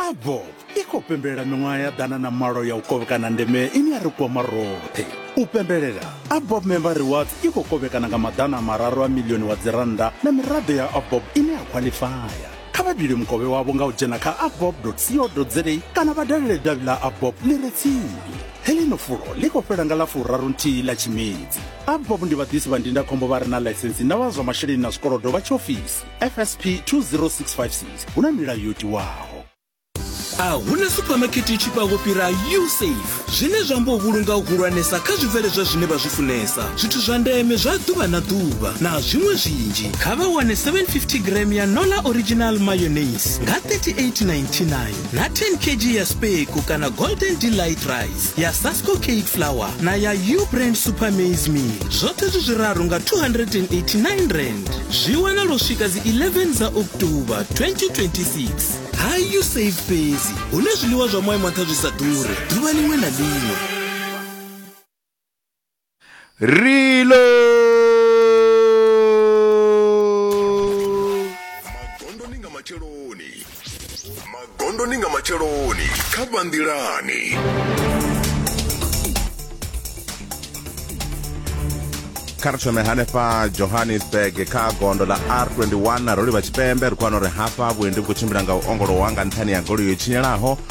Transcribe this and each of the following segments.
abo i khou pembelela miṅwaha ya ḓana na malo ya u kovhekana ndeme ine ya ri kwama roṱhe u pembelela abob member rewards i khou kovhekana nga maḓana mararu a milioni wa dzirannda na miraḓo ya abob ine ya khwaḽifaya kha vha dule mukovhe wavho nga u dzhena kha abob co za kana vha dalele davhi ḽa abob ḽi re tsini heḽino fulo ḽi khou fhela nga ḽa furaru nthihi ḽa tshimedzi abob ndi vhaḓisi vha ndindakhombo vha re na ḽaisensi na vha zwa masheleni na zwikolodo vha tshiofisi fsp 20656 hu na milayo yo tiwaho a huna supamakete i tshifhaho fhira usafe zwine zwa amba u vhulunga u hulwanesa kha zwibveledzwa zwine vha zwi funesa zwithu zwa ndeme zwa ḓuvha na ḓuvha na zwiṅwe zwinzhi kha vha wane 750 gram ya nola original mayonnaise nga 3899 na 10 kg ya speko kana golden delight rice ya sasco cake flower na ya u brand super maize meal zwoṱhe zwi zwiraru nga 289 rand zwi wanala u swika dzi 11 dza oktoba 2026 hayu safe fhedzi hune zwiḽiwa zwa moya mwaṱha zwi sa ḓure ḓuvha ḽiṅwe na ḽiṅwe Reload! magondoni nga matsheloni magondoni nga matsheloni kha vhanḓilani kha ri thome hanefha johannesburg kha gondo ḽa r21 ro livha tshipembe ri khou wana uri hafha vhuendi vhu khou tshimbila nga u ongolowa nga nṱhani ya goloi yo tshinyalaho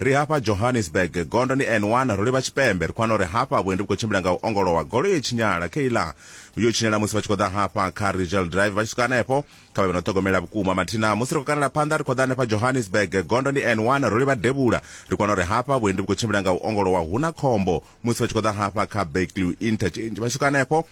Ri hafha Johannesburg, gondo ndi N one, ro livha tshipembe. Ri khou wana uri hafha vhuendi vhu khou tshimbila nga u ongolowa, goloi i tshinyala. Kayla, Yo tshinyala musi vha tshi khou ḓa hafha kha Rigel Drive, vha tshi swika hanefho, kha vhe vha no ṱhogomela vhukuma. Mathina, Musi ri khou kanela phanḓa ri khou ḓa hanefha Johannesburg, gondo ndi N one, ro livha Devhula. Ri khou wana uri hafha vhuendi vhu khou tshimbila nga u ongolowa, hu na khombo musi vha tshi khou ḓa hafha kha Berkeley Interchange, vha tshi swika hanefho,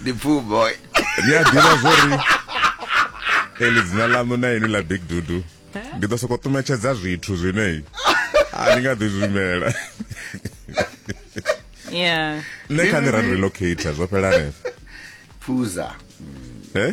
ndi poo boy ri a ḓivha zwori eli dzina ḽaṋu na ini ḽa big dudu ndi ḓo sokou ṱumetshedza zwithu zwine a ni nga ḓi zwimela yeah nṋe kha ni ra ni relocator zwo fhela hanefho phuza eh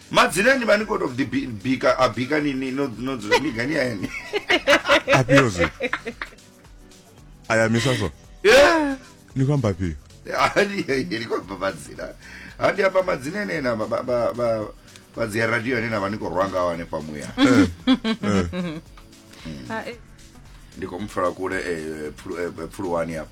Madzina ni vha ni khou tou ḓi bi- bika a bika ni ni no no dzula ni gani ya ene. afhio zwi a ya misa so Eh. ni khou amba afhio Hani ni khou amba madzina. Ha ndi amba madzina ene na ba ba ba ba- ba dzi radio ane na vha ni khou rwa ngaho hanefha muya. Ndi khou mu pfela kule eh, phulu- eh, phuluwani hafha.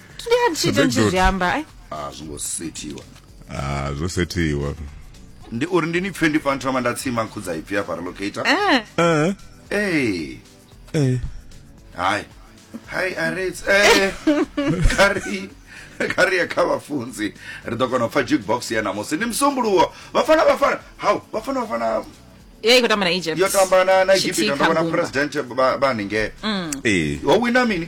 ndi a ntshita Big ntshi dude. zwi amba ai a zwo ngo sethiwa ah zwo sethiwa ndi uri ndi ni pfe ndi pfa nthoma nda tsima nkhudza ipfi ya fara locator eh eh ee eh hayi hayi arets ee kari kari ya kha vhafunzi ri ḓo kona u pfa jukebox ya namusi ndi musumbuluwo vhafana vhafana hau vhafana vhafana ye i khou tamba na egypt yo tamba na na egipita Tshitika ndo vhona Mbumba. president ba- ba haningei eh ho wina mini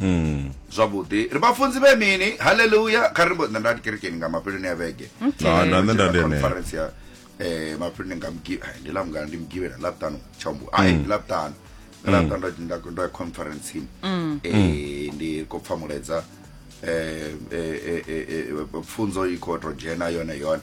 Mm. zwavhuḓi ri vhafunzi vhe mini haleluya kha ri mbo nṋe nda kerekeni nga mafheloni a vhege Okay. Na- na- nṋe nda ndi enea. conference ya eh mafheloni nga mgi ai ndi la mungana ndi mgivhela la vhutano tshambu ai ndi la vhutano Ndi la vhutano nda- nda nda ya conference eh ndi ko pfa muledza eh eh eh, eh eh, pfunzo i kho to dzhena yone yone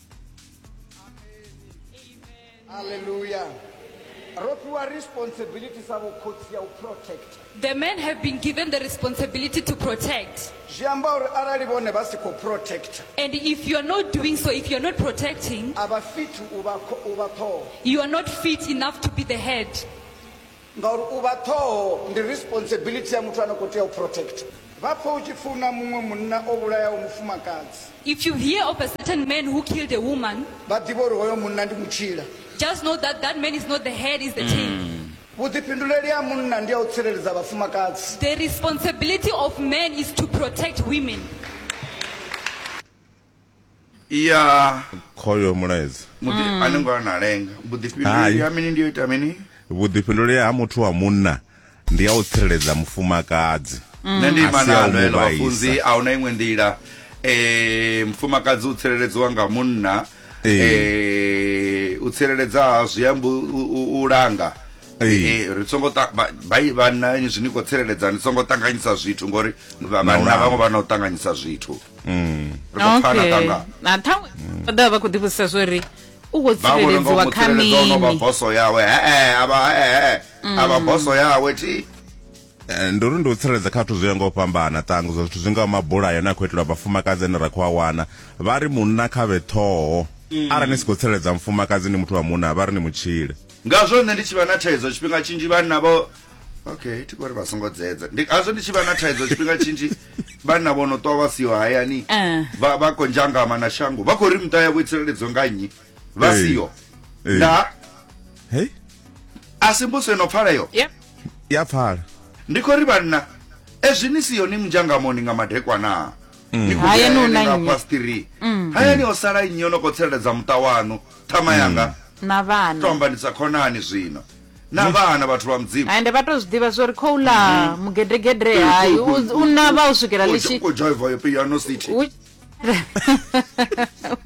Hallelujah. Ropiwa responsibility sa vhukhotsi ya u protect. The men have been given the responsibility to protect. Zwi amba uri arali vhone vha si khou protect, And if you are not doing so, if you are not protecting, a vha fit u vha kho- u vha ṱhoho. you are not fit enough to be the head. Ngauri u vha ṱhoho ndi responsibility ya muthu a no khou tea u protector. Vha pfe u tshi pfi hu na muṅwe munna o vhulayaho mufumakadzi. If you hear of a certain man who killed a woman. Vha ḓivhe uri hoyo munna ndi mutshila. Just know that that man is not the head, is the tail. Vhuḓifhinduleli ha munna ndi ha u tsireledza vhafumakadzi. The responsibility of man is to protect women. ya khoyo mulaedza muḓi mm. a ni ngo ana lenga vhuḓifhinduleli ha mini ndi yo ita mini vhuḓifhinduleli ha muthu wa munna ndi ya u tsireledza mufumakadzi mm. nṋe ndi ima nalo elo vhafunzi a huna iṅwe nḓila um mufumakadzi u tsireledziwa nga munna um u tsireledza zwi amba u langa Eh, ri songo bai vhanna zwi ni khou tsireledza ni songo ṱanganyisa zwithu ngori vhanna vhaṅwe vha na u ṱanganyisa zwithu mm. ri khou pfana okay. kana na ṱhaṅwe vha ḓovha vha khou ḓivhudzisa zwo ri u khou tsireledziwa kha mini vha vhona nga boso yawe hee a vha hee a vha mm. boso yawe thi eh, ndi uri ndi u tsireledza kha zwithu zwi ya nga u fhambana ṱangu zwa zwithu zwi nga mabulayo ane a khou itelwa vhafumakadzi ane ra khou a wana vha ri munna kha vhe ṱhoho mm. arali ni si khou tsireledza mufumakadzi ni muthu wa munna vha ri ni mutshile ngazwo nṋe ndi tshi vha na thaidzo tshifhinga tshinzhi vhanna vho okay thi kori vha songo dzedza ndi azwo ndi tshi vha na thaidzo tshifhinga tshinzhi vhanna vho no ṱwa vha siho hayani Eh. vha vha khou nzhangama na shango vha khou ri muṱa yavho i tsireledzo nga nnyi vha Eh. siho Eh. nda Hey, a si mbuso ino pfaleyo Yep. ya pfala. ndi khou ri vhanna ezwi ni siho ni munzhangamoni nga madekwana Ni khou Hayani hu na hayani nga nnyi? past three hayani o sala nnyi o no khou tsireledza muṱa wanu ṱhama yanga na vhana to ambanisa khonani zwino na vhana vhathu vha mudzimu ende vha tou zwi ḓivha zwo ri khou ḽa mm-hmm. mugedegede hai u navha u swikela litshi u dzhaiva yo piano city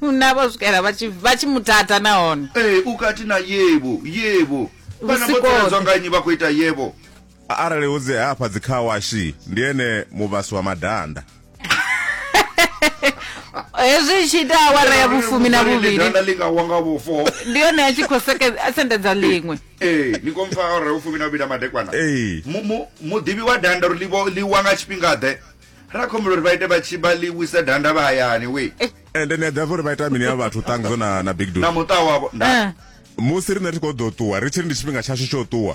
u navha u swikela vha tshi muthatha nahone ee u kati na yevo yevo vhana vho ṱeledzwa nga nnyi vha khou ita yevo arali hu dzi hafha dzi car wash ndi ene muvhasi wa madanda hezwi i tshi ita awara ya vhufumi na vhuvhili danda ḽi nga wa nga vhufo ndi yone a tshi khou seke- a sendedza ḽiṅwe ee ni khou mpfa awara ya vhufumi na vhuvhili a madekwana Ee. Mu- mu- muḓivhi wa danda uri ḽi vho- ḽi wa nga tshifhingaḓe ra khombela uri vha ite vha tshi vha ḽi wise danda vha hayani we ende ni a ḓivha uri vha ita mini ya vhathu ṱangzo na na big na dude muṱa wavho nda Eh. musi riṋe ri khou ḓo ṱuwa ri tshi ri ndi tshifhinga tshashu tsho ṱuwa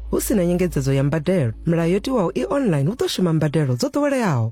hu si na nyengedzedzo ya mbadelo milayo yo tiwaho i online hu ḓo shuma mbadelo dzo ḓoweleaho